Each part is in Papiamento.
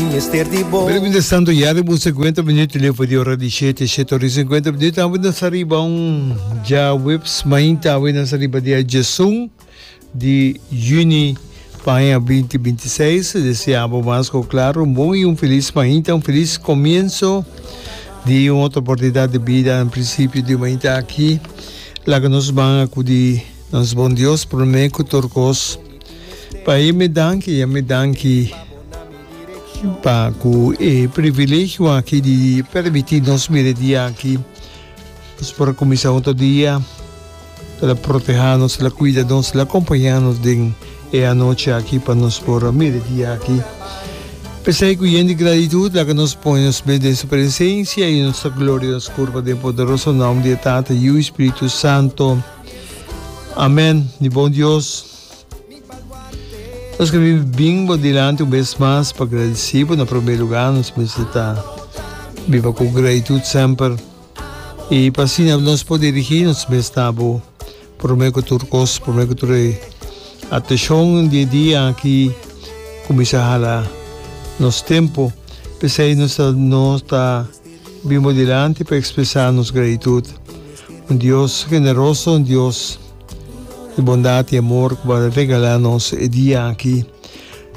Pero mientras tanto ya riba un cincuenta minuut di lefo di ora di shete, shete ora i cincuenta minuut, awe nos ta riba un djaweps mainta, awe nos ta riba dia djesun di yüni pa aña binti binti seis. Deseá bo mas ku klar un bon i un felis mainta, un felis komienso di un otro oportunidat di bida, un prinsipio di un mainta aki. Laga nos manga ku di nos Bon Dios promé ku tur kos. Pa e mi danki, a mi danki pa ku e privilegio aki di permití nos bira di aki. Nos por a kuminsá un otro dia. El a protehá nos, el a kuida nos, el a kompañá nos den e anochi aki pa nos por a bira di aki. P'esei ku yen di gratitud laga nos pone nos mes den su presensia i nos ta gloria nos kurpa den poderoso nom di e Tata, Yu i Spiritu Santo. Amen. Di bon Dios. Nos que vive bien por delante un vez más para agradecer por na primer lugar nos meseta viva con gratitud semper y para así nos por dirigir nos mes nabo primer que tur cos primer que tur atención día día aquí comienza hala nos tempo pesey nos ta nos ta Bin bo dilanti pa ekspresá nos gratitut. Un Dios generoso, un Dios di bondat i amor ku por a regalá nos e dia aki.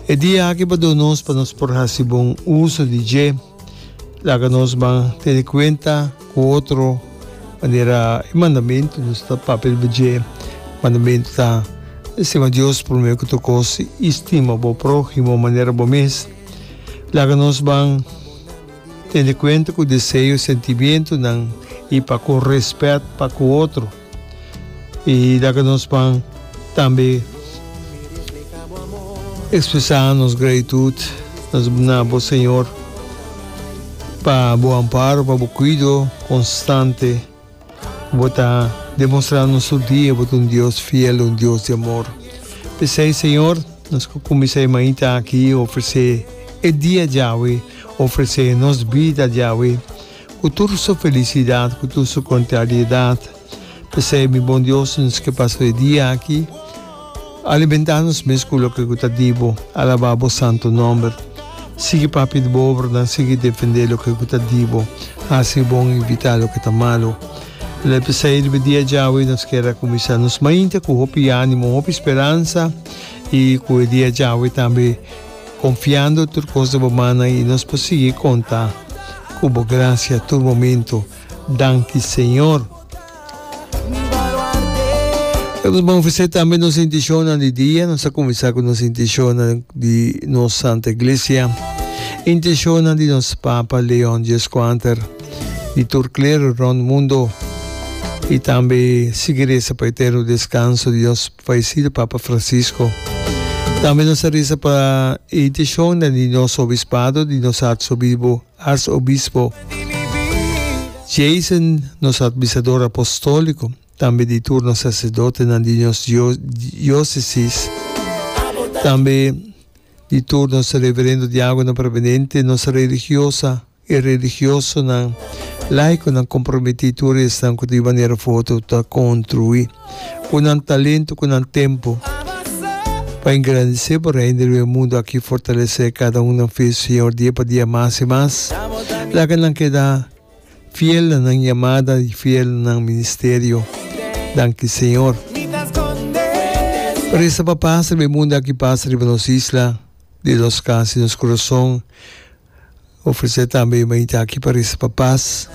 E dia aki bo a duna nos pa nos por hasi bon uso di dje. Laga nos ban tene kuenta ku otro manera e mandamentu nos ta papia riba dje. Mandamentu ta, Stima Dios promé ku tur kos i stima bo próhimo manera bo mes. Laga nos ban. Tene kuenta ku deseo, sentimentunan i pa kon rèspèt pa ku otro. I laga nos pan tambe ekspresá nos gratitut na bo Señor pa bo amparo, pa bo kuido konstante. Bo ta demonstrá nos tur dia bo ta un Dios fiel, un Dios di amor. P'esei, Señor, nos ta kuminsá e mainta aki ofresé e dia djawe, ofresé nos bida djawe ku tur su felisidat, ku tur su kontrariedat. P'esei, mi Bon Dios, nos ke pasa e dia aki. Alimentá nos mes ku loke ku ta di bo. Alabá bo santu nòmber. Sigui papia di bo obranan, sigui defendé loke ku ta di bo. Hasi bon, ivitá loke ta malu. El a bisa irbi dia djawe i nos ker a kuminsá nos mainta ku hopi ánimo, hopi speransa i ku e dia djawe tambe konfiando tur kos den bo mannan i nos por sigui konta ku bo grasia tur momentu. Danki Señor! Ka nos bon ofresé tambe nos intishonnan di dia. Nos a kuminsá ku nos intishonnan di nos Santa Iglesia, intishonnan di nos Papa Leon Xvi, di tur klero rònt mundu i tambe sigui resa pa eterno deskanso di nos fayesido Papa Francisco. Tambe nos a resa pa e intishonnan di nos obispado, di nos artsobibo. Arsobispo Jason, nos Atbisador Apostóliko, tambe di tur nos Saserdotenan di nos Diosesis, tambe di tur nos Reverendo Diagonan Prebenente, nos Religiosa i Religiosonan, Laikonan komprometí, tur esnan ku di manera foto ta kontruí. ku nan talentu, ku nan tempu, pa engrandesé bo Reino di lo e mundu aki, fortalesé kada un nan fe Señor dia pa dia mas i mas. Laga nan keda fiel na nan yamada i fiel na nan ministerio. Danki Señor. Por esta pa pasa riba e mundu aki, pasa riba nos isla, di nos kas i nos kurason. ofresé tambe e mainta aki pa resa pa pas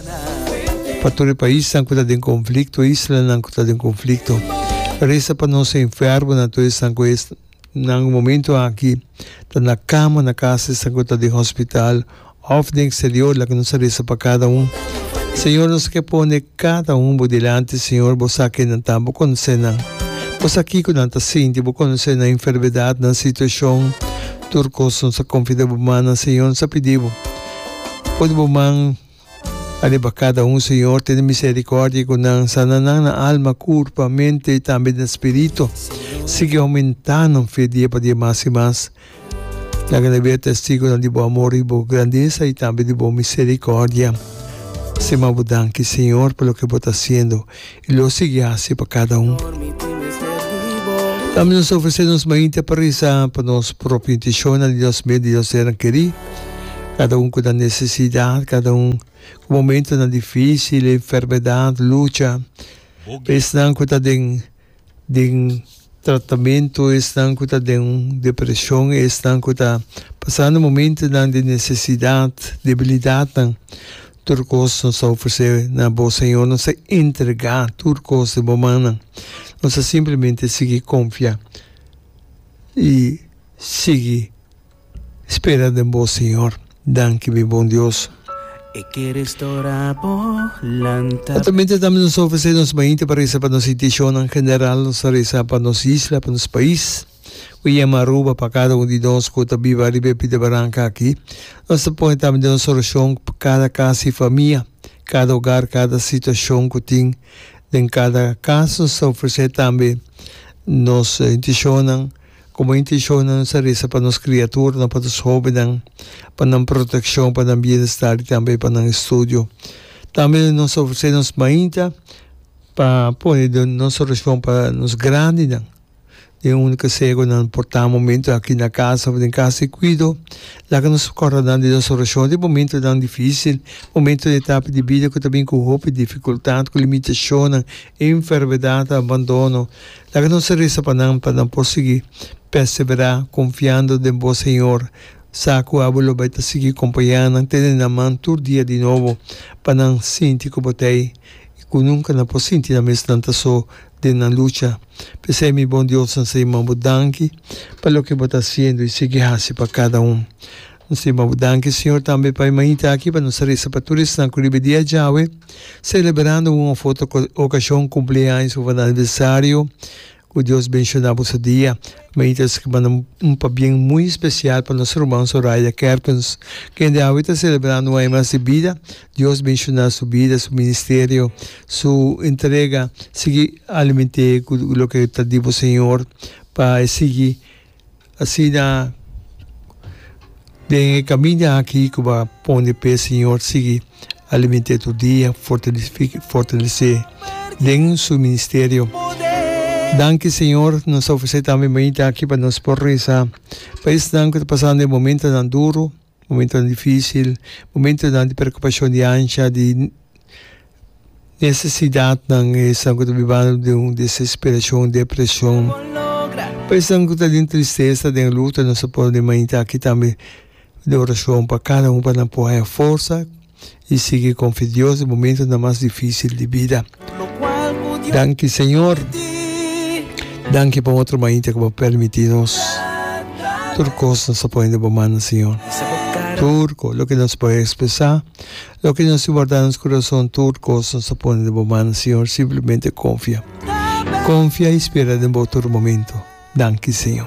pa tur e paisnan ku ta den konflikto, e islanan ku ta den konflikto. Resa pa nos enfermonan, tur esnan ku esnan momentu aki ta na kama na kas, esnan ku ta den hospital òf den eksterior, laga nos a resa pa kada un. Señor, nos a ke pone kada un bo dilanti, Señor. Bo sa kinan ta, bo konosé nan. Bo sa kiko nan ta sinti, bo konosé nan enfermedatnan, situashon. Tur cos nos a confida bo man nan Señor nos a pidi bo pone bo man ariba cada un Señor tene misericordia cu nan sana nan na alma curpa mente y tambe den spirito sigui aumenta nan fe dia pa dia mas y mas laga nan wea testigonan di bo amor y bo grandesa y tambe di bo misericordia sin mas bo danki Señor pa loke bo ta haciendo. i lo sigui hasi pa kada un. Tambe nos ta ofresé nos mainta pa resa pa nos propio intishonnan i nos meda i nos senan kerí, kada un ku na nesesidat, kada un ku momentunan difísil, enfermedat, lucha, pa esnan ku ta den. den tratamentu, esnan ku ta den un depreshon, esnan ku ta pasando momentunan di nesesidat, debilidatnan, tur kos nos ta ofresé na bo, Señor. Nos ta entregá tur kos den bo mannan. Nos ta simplemente sigui konfia i sigui. Spera den bo, Siñor. Danki, mi bon Dios. Aktualmente tambe nos ta ofresé nos mainta pa resa pa nos intishonnan general. Nos ta resa pa nos isla, pa nos pais ku yama Aruba, pa kada un di nos ku ta biba riba e pita baranka aki. Nos ta pone tambe den nos orashon pa kada kas i famia, kada ogar, kada situashon ku tin den kada kas. Nos ta ofresé tambe nos intishonnan. Como intencion nan nos a reza pa nos criaturnan, pa nos hobennan, pa nan proteccion, pa nan bienestar y tambe pa nan estudio. Tambe nos a ofrece nos mainta pa pone den nos oracion pa nos grandinan, den un conseho nan por ta momento aki na casa of den casa di cuido. Laga nos corda nan den nos oracion di momentonan dificil, momento den etapa di bida cu ta bin cu hopi dificultad, cu limitacionnan, enfermedad, abandono. Laga nos a resa pa nan pa nan por sigui perseverá konfiando den Bo, Señor. Sa ku abo lo bai ta sigui kompañá nan, tene nan man tur dia di nobo, pa nan sinti ku Bo ta ei i ku nunka nan por sinti nan mes nan ta so den nan lucha. P'esei, mi bon diosnan, seña, bo danki pa loke bo ta hasiendo i sigui hasi pa kada un. Si, ma bo danki Siñor tambe pa e mañita aki, pa nos resa pa tur esnan ku riba dia djawe, selebrando un òf otro okashon, kumpleaños òf aniversario. Ku Dios benshoná bo su dia. Mañita esaki ta manda un pabien muy spesial pa nos ruman Soraya Kerpens, kende awe ta selebrando un aña mas di bida. Dios benshoná su bida, su ministerio, su entrega. Sigui aliment'é ku loke ta di bo Señor pa e sigui. Asina den e kamiña aki ku bo a pon di pe, Señor sigui aliment'é tur dia, fortalesé den su ministerio. Danki Señor, nos ta ofresé tambe mainta aki pa nos por resa pa esnan ku ta pasando e momentonan duru. momentonan difísil, momentonan di preokupashon di ansha, di nesesidatnan, esnan ku ta bibando den un desesperashon, un depreshon. Pa esnan ku ta den tristesa, den luto nos a pone mainta aki tambe di orashon pa kada un pa nan por haya forsa i sigui konfia Dios den momentonan mas difísil di bida. Danki Señor, danki pa un otro mainta ku bo a permití nos. Tur kos nos a pone den bo mannan Señor. Tur kos, loke nos por ekspresá, loke nos tin wardá na nos kurason, tur kos nos a pone den bo mannan Señor, simplemente konfia. Konfia i spera den bo tur momento. Danki Señor.